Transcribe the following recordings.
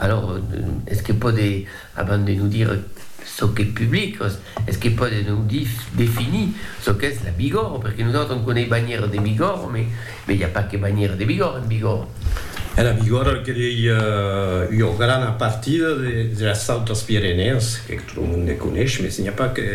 Alors, es que pòde, abans de nos dire çò qu'es public, es que pòde nos dire, definir çò qu'es la Bigòrre, perque nosautres on coneis banhièra de Bigòrre, mais mais i a pas que banhièra de Bigòrre en Bigòrre. E la Bigòrre que ei ua grana partida de las Autes Pirenèas, que tot lo monde coneis, mais n'i a pas que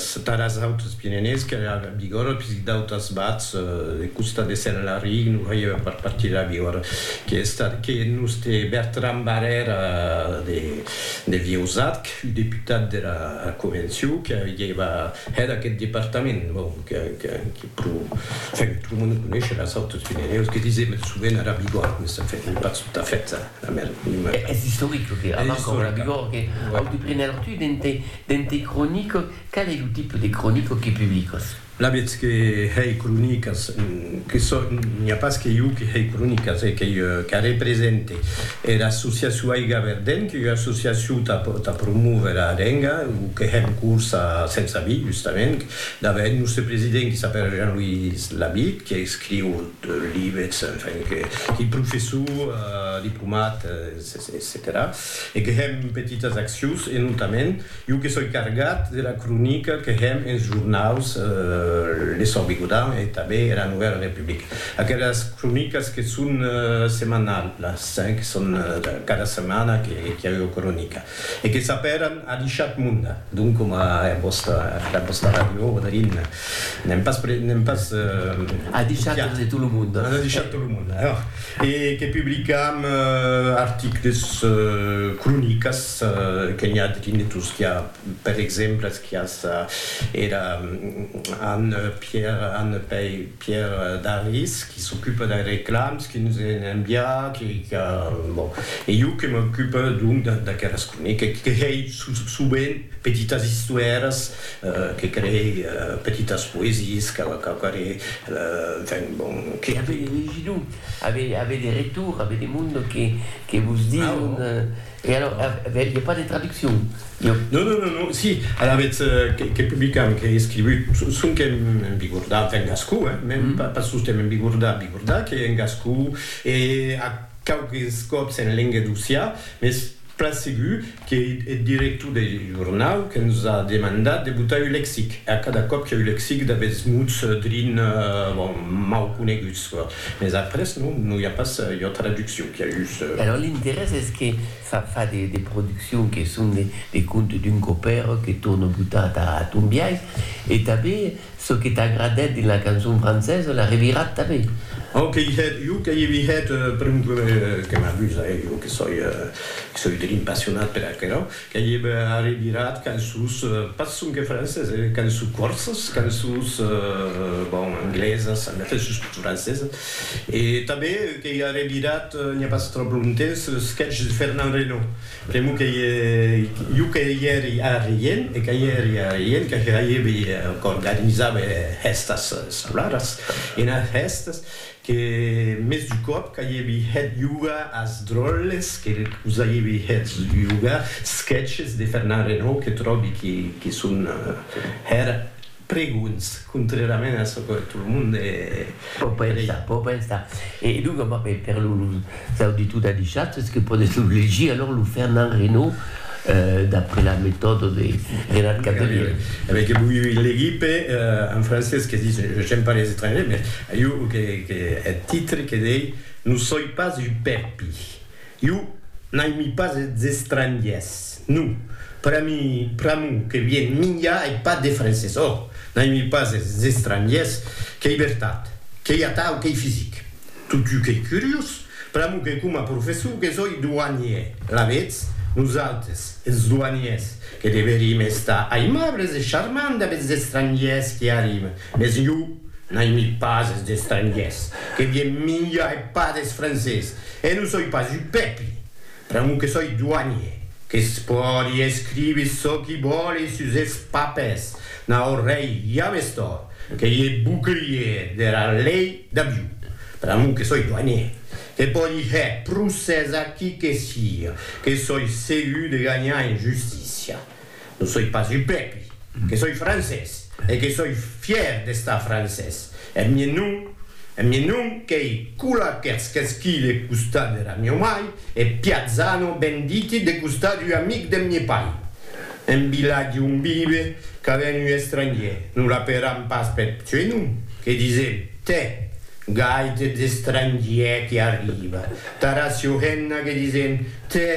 Sataras autres Pirenèus qu'èra a Bigòrra, puisque d'autas bats de costat de Sèllarric non hèiva pas partir a Bigòrra, que estat que nos te Bertran Barrèra de Vieusat, que fut deputat dera Convencion, que hèiva hèt aqueth departament, bon, que pro, enfin, pro mos non conéisher eras autres Pirenèus, que disèm eth sovent ara Bigòrra, mès enfin, ei pas tot à fait era merma. Es istoric, lo que abarca aurà Bigòrra, que auti prenèr tut ente Dens tes cronicas, qual ei lo tipe de cronicas que publicas? La vètz que hèi cronicas, que sò, n'i a pas que jo que hèi cronicas, e qu'ei jo qu'a represente. Era associacion Aiga Verdent, qu'ei ua associacion tà tà promóver a lenga, o que hèm corsa sensa vi, justament, dave eth nòste president qui s'apèra Jean-Louis Labitte, qui escriu lives, enfin, qu'ei professor, diplomat, etcetèra. E que hèm petitas accions e notament jo que soi cargat de la cronica que hèm ens jornaus Le Sòrt Bigodan e tanben era Novèla Republica. Aquelas cronicas que son semanalhas, que son cada setmana qu'i a ua cronica e que s'apèran A l'Ishat Munda, donc coma era vòsta, era vòsta ràdio Odèrin, n'èm pas, n'èm pas... A l'Ishat de tot lo monde. A l'Ishat de tot lo monde. E que publicam articles, cronicas, que n'i a drin de tosquiá, per exemple, esquiás era Anne Pierre, Anne Pei, Pierre Daris, qui s'ocupe dei reclams, qui nos en enviá, qui, qui, bon, e jo que m'ocupe donc d'aqueras cronicas, que hèi sovent petitas istoèras Que creei petitas poesies qu'auquaré enfin bon que. Avei de legidu, avei de retur, avei de mondo que que vos diun e alors avei de pas de traduccion. Non non non non si alavetz que publicam qu'ei escrivut sonque en bigordà enfin en gascon eh mèn pas sosten en bigordà bigordà qu'ei en gascon e a quauques còps en lenga d'ossià mes Plan segur que eth director deth jornau que nos a demandat de botar un lexic, e a cada còp qu'ei un lexic d'aguests mots drin, bon, mau coneguts, mès après non, non i a pas ua traduccion, qu'i a just. Alòrs l'interès es que fa fa de produccions que son de contes d'un copèr que torno botar atà ath hom biais, e tanben Çò que t'agradèt de la cançon francesa l'a revirat tanben. Au qu'ei hèt, jo qu'ei evi hèt per un problèma que m'a dus, e jo que soi, que soi de l'impassionat per aquerò, qu'ei evi a revirat cançons, pas sonque francesas, e cançons còrsas, cançons, bon, anglesas, en efèt sustot francesas, e tanben qu'ei a revirat, n'i a pas tròp longtemps, los sketches de Fernand Reynaud. Temo que jo que i èri arreient e que i èri arreient que ja avi qu'organizat hèstas salaras ena hèstes que mès d'un còp qu'avi hèt jogar as dròlles que vos avi hèt jogar sketches de Fernand Renaud que tròbi que son hèra Pregunts, contrairament a çò que tot lo monde crei. Pò pensar. E donc, per los auditors de Dichatz que pòden lo legir, alors lo Fernand Reynaud d'après la metòda de Renat Cavelièr. Avèi que voi legir per un francés que ditz j'aime pas les étrangers, mès ieu que eth titre que dei, non soi pas un pèrpi. Iu n'aimi pas es estrangiers, no. Per a mi, pr'amor que vien minha e pas de francés. Ò! N'aimi pas es estrangiers, qu'ei vertat, qu'ei atau qu'ei fisic. Totú qu'ei curiós, pr'amor que coma professor que soi douanier, la vetz? Nosaltres, es douaniers, que deverim estar aimables e charmants damb es estrangiers qui arriben. Mes jo n'aimi pas es estrangiers, que vien minja e pas des francés, e non soi pas un pèpi, pr'amor que soi doanier, que's pòdi escrivi çò qui vòli sus es papers, n'aurei james tòrt que ié bouclier dera lei d'avion, pr'amor que soi doanier, que pòdi hèr procès a qui que siga, que soi segur de ganhar en justícia. Non soi pas du pèpli, que soi francés e que soi fièr d'estar francés. Eth mien nom, eth mien nom qu'ei Cola Kerskesky de costat dera mieu mai e Piazzano Benditi de costat d'ua amic deth mie pair. En vilatge on vive qu'a ben un estrangier, non l'aperam pas peth suei nom, que disem, tè, gaite d'estrangier que arriba tara Siohenna que disem, tè,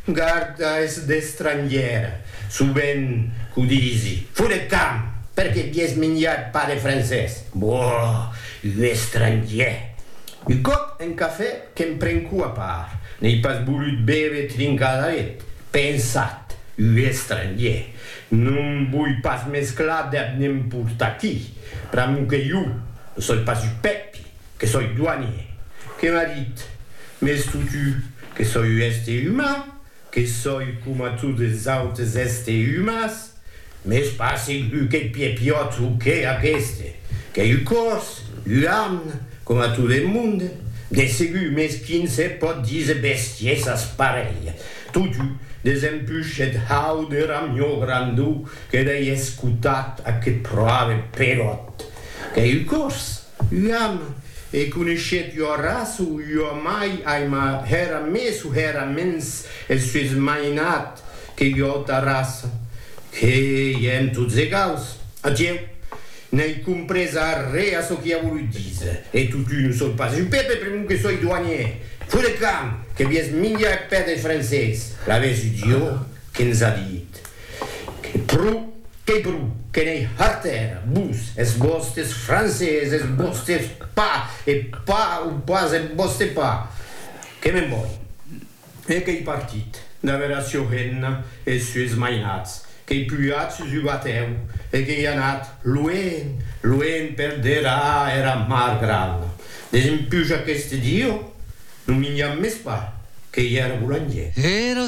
Garda es d'estrangièr, sovent qu'o disi. Fo de camp, perque bies minjat pas de francés. Boh! Un estrangièr! Un còp en cafè que'm prenco a part, n'ei pas volut bève trincadaret, pensat, un estrangièr! Non voi pas mesclar dab nemporta qui, pr'amor que jo, ne soi pas un pèpi, Que soi doanier, que m'a dit, m'es foutu, que soi u èste umà, que soi coma tot es autes èste umàs, m'es pas segur qu'eth piepiòt o que aqueste, qu'ei u còs, u arn, coma tot eth monde, de segur m'es quin se pòt díser bestiesas parelh, totu des un puchet hau de ramió grandó que dei escotat a que proave peròt, qu'ei u còs. Uam, e coneishèt ua raça o ua mai aima hèra mès o hèra mens eth sues mainat que ua auta raça? Que ièm tots egaus. Adieu. N'ai comprés arré a çò qui a volut díser. E totun o soi pas un pèpe pr'amor que soi doanièr. Fut de camp! Que vies minjar eth pè deth francés. L'avèsi Dieu que ns a dit. Que pro, que pro, que n'ei harter, vos, es vòstes francés, es vòstes pas, e pas o pas es vòste pas! Que me'n voi! E qu'ei partit, d'aver a Siorena es sues mainats, qu'ei pujat sus ua tèu e qu'ei anat luenh, luenh per dera era mar grana, Desempuja qu'este dieu, non minjam mès pas, qu'ei era boulangèr. Era